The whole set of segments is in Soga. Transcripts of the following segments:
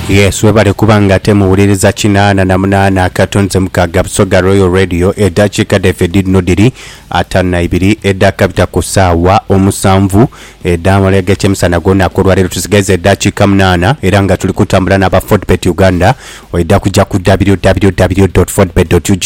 Yes, webale kuba nga ate muwuliriza kinaana na munaana akato nze mukaaga Busoga Royal Radio eddakiika dhaife dhidhino dhiri ataano na ibiri edhakabita ku saawa omusanvu edh'amalya g'ekyemisana gw'olunaku olwaleero tusigaiza eddakiika munaana era nga tuli kutambula n'aba Fodbet Uganda oidha kujja ku www.fodbet.ug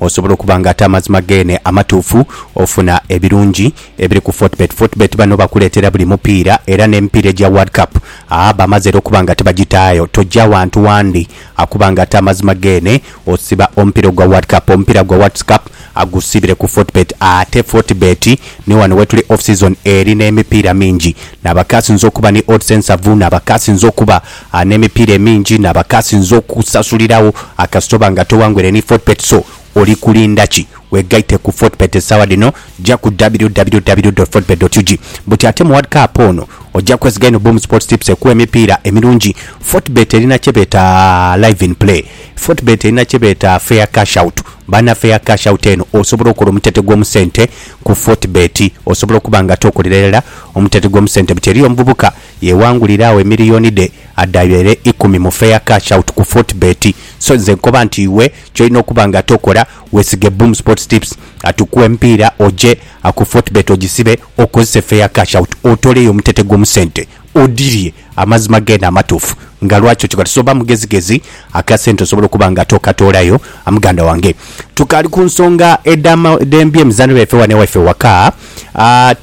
osobola okuba nga ate amazima geene amatuufu ofuna ebirungi Ebiri ku Fortebet Fortebet bano bakuleetera buli mupiira era n'emipiira egya World Cup aa bamaze era okuba nga tibagitaayo. Tojja wantu wandi akuba nga ate amazima geene osiba omupiira ogwa World Cup. Omupiira gwa Worlds Cup agusiibire ku Fortebet. Ate Fortebet ni wano wetuli off season eri n'emipiira mingi n'abakaasinze okuba ni odds ensavu n'abakaasinze okuba aa n'emipiira emingi n'abakaasinze okusasulirawo aa kasita oba nga towangwire ni Fortebet so oli kulinda ki? Wegaite ku Fortebet essaawa dhino ja ku www.fortebet.ug buti ate mu World Cup ono ojja kwesiga inho Boom Sports Tips ekuwe emipiira emirungi. Fortebet erina kye beeta Live in Play. Fortebet erina kye beeta Fair Cash Out. Baana Fair Cash Out eno osobola okola omutete gw'omu sente ku Fortebet. Osobola okuba nga tokolera irala omutete gw'omu sente buti eriyo omuvubuka yewangulira agho emiliyoni dhe adhayo ere ikumi mu Fair Cash Out ku Fortebet. So nze nkoba nti iwe ky'olina okuba nga tokola. Weesige Boom Sports Tips atukuwe emipiira oje ku Fortebet ogisibe okozese Fair Cash Out otoleyo omutete gwo mu sente odirye amazima geene amatuufu nga lwaki okikola. So ba mugezigezi akasente osobole okuba nga ate okatoolayo muganda wange. Tukaali ku nsonga edh'ebyemizaanho byaife wano ewaife ewaka,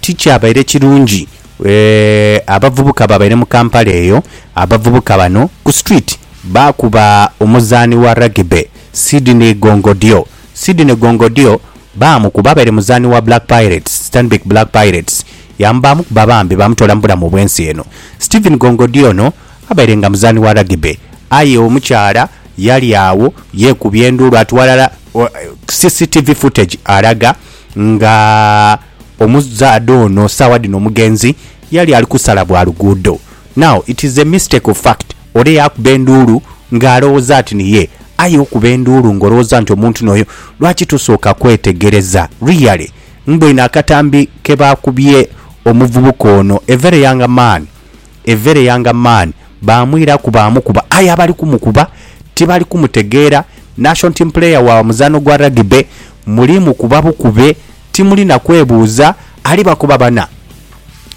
tikyabaire kirungi abavubuka ababaire mu Kampala eyo, abavubuka bano ku street baakuba omuzaani wa Rugby, Sydney Gongodyo Sydney Gongodyo baamukuba abaire muzaani wa Black Pirates, Stanbic Black Pirates, yaamubaamu kuba bambi baamutoola mu bulamu obw'ensi eno. Stephen Gongodyo ono abaire nga muzaani wa Rugby aye omukyala yali agho yeekubya enduulu ati walala CCTV footage alaga nga omuzaadha ono saawa dhino omugenzi yali ali kusala bwa luguudo. Now it is a mistake of fact. Ole yaakuba enduulu ng'alowooza ati ni ye. Aye okuba enduulu ng'olowooza nti omuntu n'oyo, lwaki tosooka kwetegereza? Really? Mboine akatambi ke baakubye omuvubuka ono, a very young man, a very young man, baamwiraku baamukuba aye abali kumukuba tibali kumutegeera. Nation team player wa muzaano gwa Rugby muli mukuba bukube timuli na kwebuuza alibakuba bana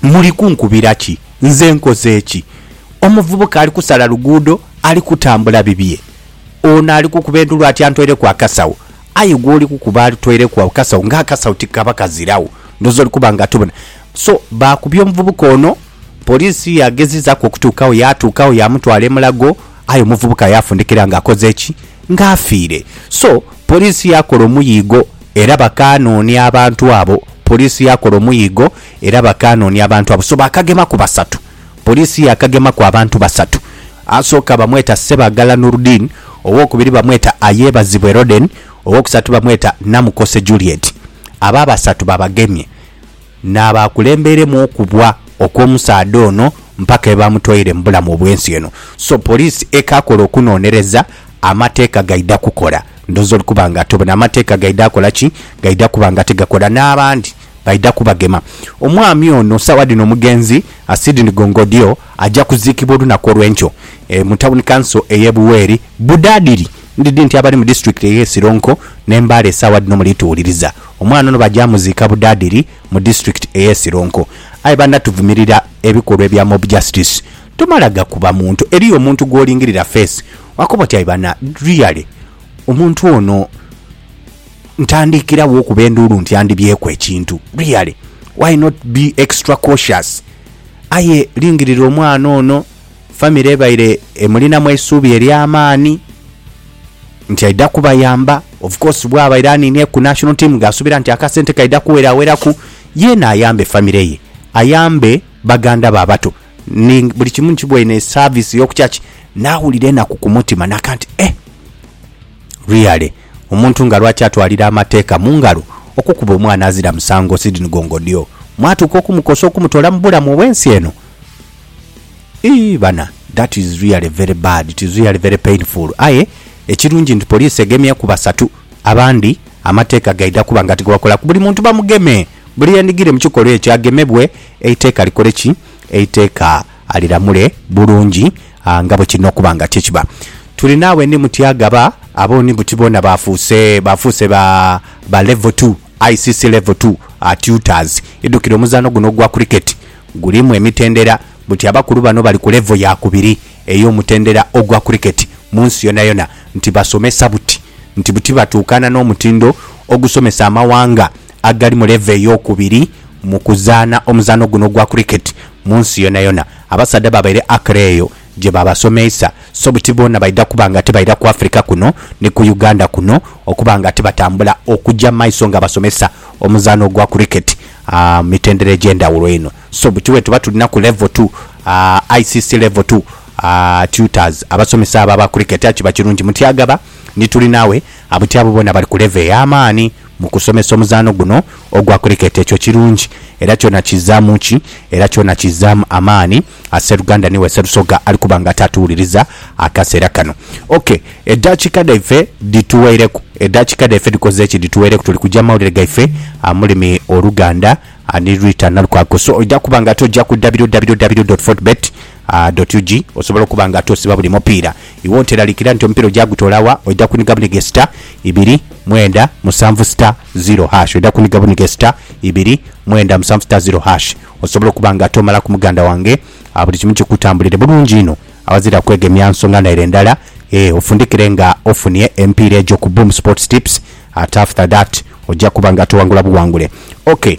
muli kunkubira ki? Nze nkoze ki? Omuvubuka ali kusala luguudo, ali kutambula bibye. Ono ali kukuba endulu ati antoireku akasawo. Aye gwoli kukuba ali toireku agho kasawo nga akasawo tikaba kaziragho. Ndhooza oli kuba nga tobona. So baakubye omuvubuka ono, poliisi yaagezizaaku okutuukagho yaatuukagho yaamutwala e Mulago aye omuvubuka yaafundikira nga akoze ki? Nga afiire. So poliisi yaakola omuyiigo era bakaanoonia abantu abo. Poliisi yaakola omuyiigo era bakaanoonia abantu abo. So baakagemaku basatu. Poliisi yaakagemaku abantu basatu. Asooka bamweta Ssebagala Nurdeen, owookubiri bamweta Ayebazibwe Roden, owookusatu bamweta Namukose Juliet. Abo abasatu babagemye n'abaakulembeiremu okubwa okw'omusaadha ono mpaka ye baamutwaire mu bulamu obw'ensi eno. So poliisi ekaakola okunoonereza, amateeka gaidha kukola. Ndhooza oli kuba nga ate obona amateeka gaidha kola ki? Gaidha kuba nga ate gakola. N'abandi baidha kubagema. Omwami ono sawa dhino omugenzi Sidney Gongodyo aja kuziikibwa olunaku olwenkyo e mu tawuni kanso eye Buweri Budadiri ndidhi nti abali mu disitulikiti eye Sironko ne Mbale sawa dhino muli tuwuliriza omwana ono baja muziika Budadiri mu disitulikiti eye Sironko aye bana tuvumirira ebikolwa ebya mob justice tomala gakuba muntu eriyo omuntu gwolingirira face wakoba oti aye bana really omuntu ono. Ntandiikiragho okuba enduulu nti andibyeeku ekintu? Really? Why not be extra cautious? Aye lingirira omwana ono, famire ebaire emulinamu eisuubi ery'amaani nti aidha kubayamba. Of course bwabaire aniinye ku national team gh'asuubira nti akasente kaidha kuweraweraku yeena ayambe famire ye, ayambe baganda be abato ni buli kimu nkiboine esaaviisi y'oku church. Naawulira enaku ku mutima naka nti, Eh! Really? Omuntu nga lwaki atwalira amateeka mu ngalo okukuba omwana azira musango Sidney Gongodyo mwatuuka okumukosa okumutola mu bulamu obw'ensi eno? Iyii bana that is really very bad it is really very painful aye ekirungi nti police egemye ku basatu abandi amateeka gaidha kuba nga tigabakola ku buli muntu bamugeme buli yendigire mu kikolwa ekyo agemebwe eiteeka likole ki? Eiteeka aliramule bulungi nga bwe kirina okuba nga kye kiba. Tuli naawe ni mutya gaba abo ni buti boona baafuuse baafuuse ba ba Level Two, ICC Level Two tutors. Idhukire omuzaano guno ogwa Cricket gulimu emitendera buti abakulu bano bali ku level ya kubiri ey'omutendera ogwa Cricket mu nsi yonayona nti basomesa buti nti buti batuukana n'omutindo ogusomesa amawanga agali mu level ey'okubiri mu kuzaana omuzaano guno ogwa Cricket Mu nsi yonayona abasaadha baabaire Accra eyo gye baabasomeisa, so buti boona baidha kuba nga tibaira ku Africa kuno ni ku Uganda kuno okuba nga tibatambula okuja mu maiso nga basomesa omuzaano gwa Cricket mu mitendera egy'endhawulo inho. So buti bwetuba tulinaku Level two, ICC Level two Tutors, abasomesa abo aba Cricket, aye kiba kirungi muti agaba ni tuli nawe buti abo boona bali ku level ey'amaani. Mu kusomesa omuzaano guno ogwa Cricket ekyo kirungi era kyona kizzaamu ki? Era kyona kizzaamu amaani a sseruganda ni we Sserusoga ali kuba nga ataatuwuliriza akaseera kano. OK, eddaakika dhaife dhituweireku. Eddaakika dhaife dhikoze ki? Dhituweireku. Tuli kuja mu mawulire gaife amulimi Oluganda ni Ritah Nalukwago. So oidha kuba nga ate oja ku www. Fortebet. A doti uji osobola okuba nga ate osiba buli mupiira iwe oteralikira nti omupiira oja gutola wa oja kuniga bunige star ibiri mwenda musanvu star ziro hash oja kuniga bunige star ibiri mwenda musanvu star ziro hash osobola okuba nga ate omalaku muganda wange a buli kimu kikutambulire bulungi inho awazira kwegemya nsonga naire ndala ee ofundikire nga ofunie emipiira egyo ku boom sports tips ate after that oja kuba nga ate owangula buwangule ok.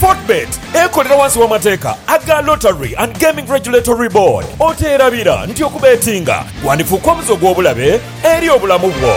Fortebet ekolera wansi w'amateeka aga Lottery and Gaming Regulatory Board. Oteerabira nti okubeetinga kwandifuuka omuze ogw'obulabe eri obulamu bwo.